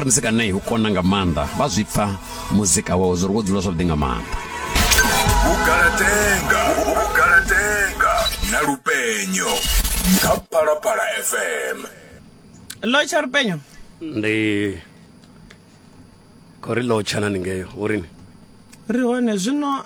ri muzika nei u kona nga maanḓa vha zwi pfa muzika wawe zwo ri wo dzula zwavhuḓi nga maanḓa vhugalatenga vhugalatenga na lupenyo kha phalaphala fm lotsha lupenyo ndi khou ri lotsha na ningeyo urini ri hone zwino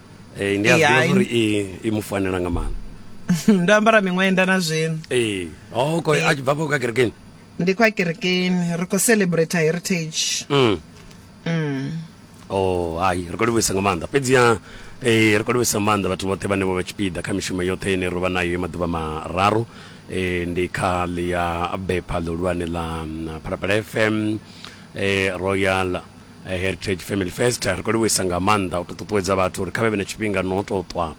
ee ndi a Ee, ai. ḓivha uri i i mu fanela nga maanḓa ndo ambara miṅwenda na zwino ee o khou a tshi bva fha kha kerekeni ndi kwa kerekeni ri khou celebrate heritage Mm. mm. o hai ri khou livhuisa nga maanḓa fhedziha eh, ri khou livhuisa nga maanḓa vhathu vhoṱhe vhane vho vha tshipiḓa kha mishumo yoṱhe ine ro vha nayo ya maḓuvha mararu eh, ndi kha ḽi ya bepha ḽihulwane ḽa mm, phalaphala fm eh, royal Heritage Family First ri khou livhuisa nga maanḓa u tou ṱuṱuwedza vhathu uri kha vhe vhe na tshifhinga no tou ṱwa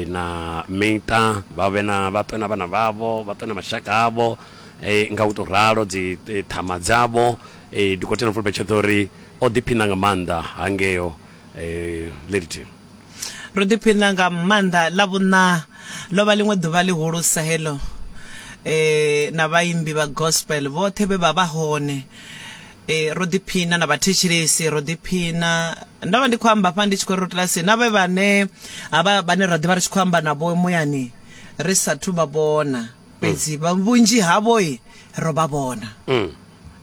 na miṱa, vha vhe na vha ṱwe na vhana vhavho, vha ṱwe na mashaka avho nga u tou ralo dzi ṱhama dzavho. Dokotela Mfulubetsheḓo o ri o ḓiphina nga maanḓa hangeo Lilliton. Ro ḓiphina nga maanḓa. Ḽavhuṋa ḽo vha ḽiṅwe ḓuvha ḽihulusa heḽo na vhaimbi vha gospel vhoṱhe vhe vha vha hone. E, ro ḓiphina na vhathetshelesi ro ḓiphina ndo vha ndi khou amba fha ndi tshi khou ri ro kilasini na vhe vhane ha vha vhane ra ḓivha ri tshi khou amba navho muyani ri sathu vha vhona fhedzi vha vhunzhi havho i ro vha vhona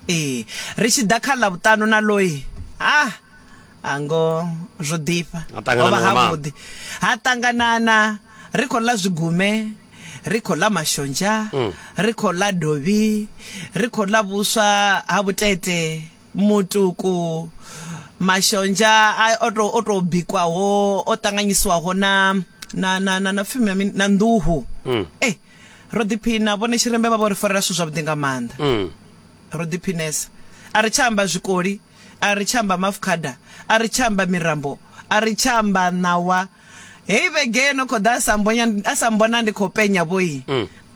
ee ri tshi ḓa kha ḽa vhuṱanu na loi ha ha ngo zwo ḓifha Ha ṱanganana hovha nga maanḓa. havhuḓi ha ṱanganana ri khou ḽa zwigume ri khou ḽa mashonzha Mm. ri khou ḽa dovhi ri khou ḽa vhuswa ha vhutete mutuku mashonzha a- o tou- o tou bikwaho o ṱanganyisiwaho na na na na na pfimi ya mini? na nḓuhu Mm. Eh, ro ḓiphina vhone tshirembe vha vho ri farela zwithu zwavhuḓi nga maanḓa Mm. ro ḓiphinesa a ri tsha amba zwikoli A ri tsha amba mafukhada, a ri tsha amba mirambo, a ri tsha amba ṋawa. Heyi vhege yo no khou ḓa a sa mbonya, a sa mbona ndi khou penya vhoi,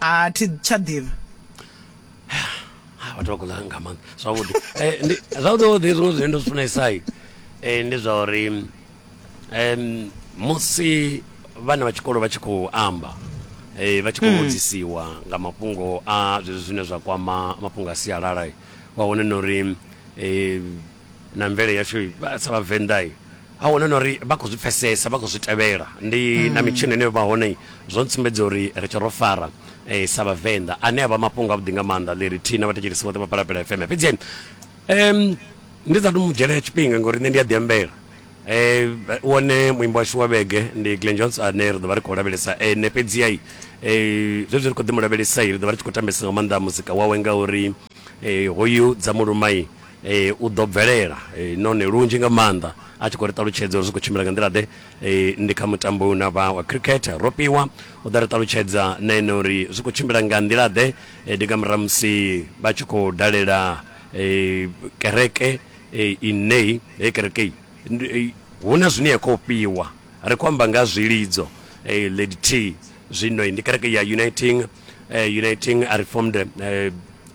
a thi tsha ḓivha. Ha, vhathu vha khou ḽa nga maanḓa. Zwavhuḓi. Eh, ndi zwavhuḓi vhuḓi zwiṅwe zwine ndo zwi funesa eh, ndi zwa uri em musi vhana vha tshikolo vha tshi khou amba eh, vha tshi khou vhudzisiwa nga mafhungo a zwezwi zwine zwa kwama mafhungo a sialala. wa wana na uri um na mvele yashu sa vhavenḓa a wana na uri vha khou zwi pfesesa vha khou zwi tevhela ndi na mm. mitshini ine vha hone zwo ntsumbedza uri ri tshe ro fara um sa vhavenḓa ane a vha mafhungo avhuḓi nga maanḓa ḽiri thina vhathetshelisi vhoṱhe vha palapela fm fhedzi um ndi sa to mu dzhela tshifhinga ngori nṋe ndi a ḓiambela Wone muimbi washu wa vhege ndi Glen Jones ane ri ḓovha ri khou lavhelesa ene fhedziha zwezwi ri kho ḓi mulavhelesa ri ḓovha ri tshi khou tambesa nga maanḓa muzika wawe ngauri hoyu dza muluma u ḓo bvelela nahone lunzhi nga maanḓa a tshi khou ri ṱalutshedza uri zwi khou tshimbila nga nḓila ḓe ndi kha mutambo na vha wa cricket ro fhiwa u ḓa ri ṱalutshedza na ene uri zwi khou tshimbila nga nḓila ḓe ndi nga murahu musi vha tshi khou dalela kereke e, inei he kerekei e, hu na zwine ya khou fhiwa ri khou amba nga zwilidzo e, lady t zwino ndi kereke ya uniting e, uniting a reformed e,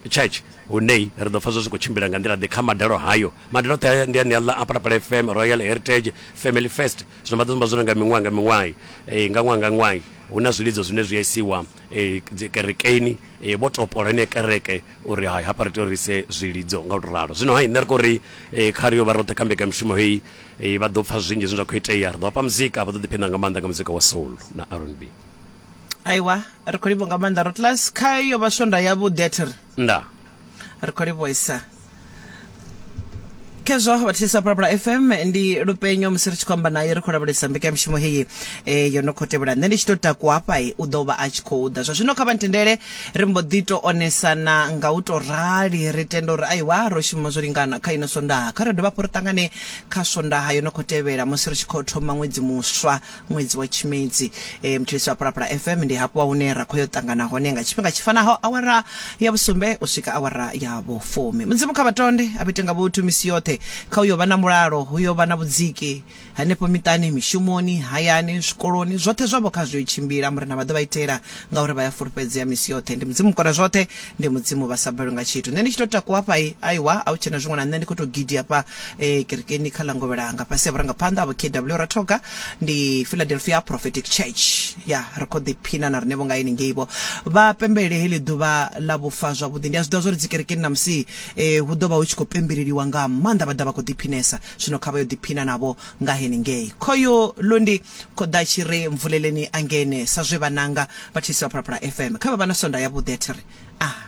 church hune ri ḓo pfa zwo zwi khou tshimbila nga nḓila ḓe kha madalo hayo madalo oṱhe ndi ane aḽa apalapala fm royal heritage family fest zwino vha ḓo zimba zwone nga miṅwaha nga miṅwahi e, nga ṅwaha nga ṅwahi hu na zwilidzo zwine zwi a isiwa e, kerekeni Ee, vho topola ine kereke uri hai hafha ri tea uri ise zwilidzo nga u tou ralo zwino hai nṋe ri khou ri eh, kha ri yo vha roṱhe kha mbekamishumo heyi eh, vha ḓo pfa zwinzhi zwine zwa khou itea ri ḓo vhafha muzika vha ḓo ḓiphiṋa nga maanḓa nga muzika wa soul na rnb aiwa ri khou livho nga maanḓa rotlas kha yo vha swonda yavhuḓi a thi ri nda ri khou livhuesa khezwo vhathisa phalaphala fm ndi lupenyo musi ri tshi khou amba naye ri khou lavhelesa mbekanyamushumo heyi e, yo no khou tevhela nṋe ndi tshi tou takuwa hafha i u ḓo vha a tshi khou ḓa zwa zwino kha vha ntendele ri mbo ḓi tou onesana nga u tou rali ri tenda uri aiwa ro shuma zwo lingana kha ino swondaha kha ri dovha hafhu ri ṱangane kha swondaha yo no khou tevhela musi ri tshi khou thoma ṅwedzi muswa Ṅwedzi wa Tshimedzi, e, Mthulisi wa Phalaphala FM, ndi hafha hune ra khoyo ṱangana hone nga tshifhinga tshi fanaho awara ya vhusumbe u swika awara ya vhufumi. Mudzimu kha vhatonde a vhete nga vhuthu misi yoṱhe. Kha uyo vha na mulalo, huyo vha na vhudziki hanefho miṱani, mishumoni, hayani, zwikoloni, zwoṱhe zwavho kha zwiyo tshimbila. Murena vha ḓo vha itela ngauri vha ya fulufhedzea misi yoṱhe. Ndi Mudzimu Mukona zwoṱhe. Ndi Mudzimu vha sa balwi nga tshithu. Nṋe ndi tshi tou takuwa hafha i, aiwa a hu tshena zwiṅwe na nṋe ndi khou tou gidi hafha eh, kerekeni kha ḽa Ngovhelanga fhasi ha vhurangaphanḓa ha Vho KW Rathoga. Ndi Philadelphia Prophetic Church. Ya, ri khou ḓiphina na riṋevho nga henengei vho. Vha pembelele heḽi ḓuvha ḽa vhufa zwavhuḓi. Ndi a zwi ḓivha zwa uri dzikerekeni ṋamusi eh, hu ḓo vha hu tshi khou pembeleliwa nga maanḓa vha ḓa vha khou ḓiphinesa. Zwino kha vha yo ḓiphina navho nga henengei. Khoyu lu ndi Khoḓa tshi re mvuleleni a ngene sa zwe vhananga vha Thisi vha Phalaphala FM kha vha vha na swondaha yavhuḓi a thi ri, Aa!